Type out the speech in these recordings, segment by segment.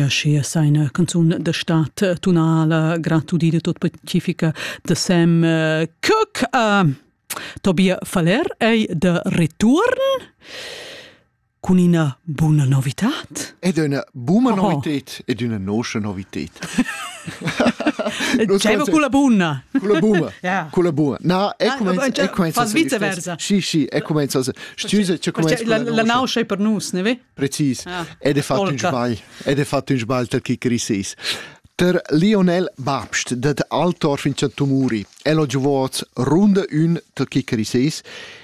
Aschia sa ina canzun da stat tunala gratudida tot pacifica de Sam eh, Cook. Uh, Tobia Faller ei de return cun ina buna novitat. Ed una buna oh. novitet ed una nosce novitet. Diciamo con la buna. Con la buna. Yeah. Con la buna. No, è ah, cominciato. Fa vice versa. Sì, sì, è cominciato. Stüse, c'è come la nauscia è per nus, ne ve? Precis. Ah. Ed è fatto un sbagl. Ed è fatto un sbagl tal che crisis. Der Lionel Babst, dat Altor fin Tumuri, elo giuvoz runde un tal che crisis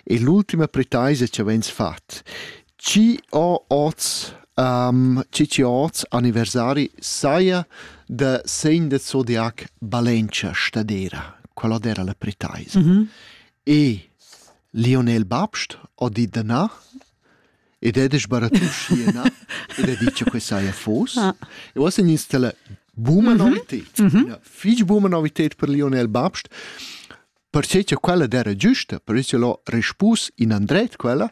e l'ultima pretaisa ci avens fat. Ci ho oz um, ci oz anniversari saia de segn de zodiac Valencia stadera, quella era la pretaisa. Mm -hmm. E Lionel Babst ha dit da na ed è sbaratù schi e na ed ha dit che quei saja fos. Ah. E uossa in installa buna mhm. novited, una fich buna novited per Lionel Babst, perché che quella era giusta, per isso l'ho respus in andret quella,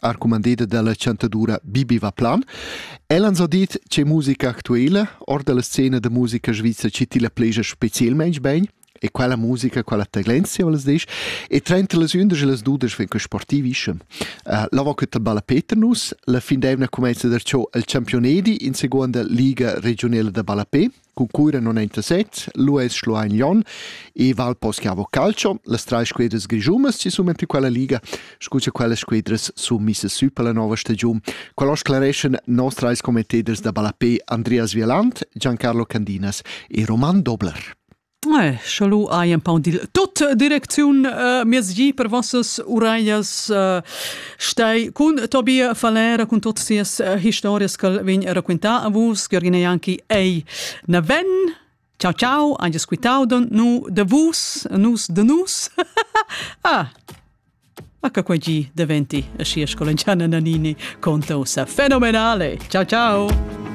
arcumandeda dalla chantadura Bibi Vaplan. Ella ha dit che musica actuela or dalla scena da musica svizra ci ti la pleja specialmente bene e quella musica, quella tendenzia, volas disch, e trenta las undas e las dudas fin che sportivischem. Uh, la va quetta balla Peter nus, la fin d'evna comenza da ciò al Championedi in seconda liga regionala da ballapé, Cu Cuira non è interessat, lo es Schluein Jon e Val Poschiavo Calcio, las trai squedras grigiumas si su mentre quella liga, scu cha quellas squedras sun missas sü per la nova stagiun. Quella sclareschan nos trais commenteders da ballapé Andreas Vieland, Giancarlo Candinas e Roman Dobler. Eh, Schalu hai empau dil tot direcziun uh, miezgi per vossas ureias uh, Stei cun Tobia Falera cun tuts sias uh, historias che vegn a racquintar a vus, Giorgina Janki, ei na ven Ciao ciao, anche squitaudon nu de vus, nus de nus. ah, H quei gi diventi a sia scolenciana Nanini conta ussa fenomenale. Ciao ciao.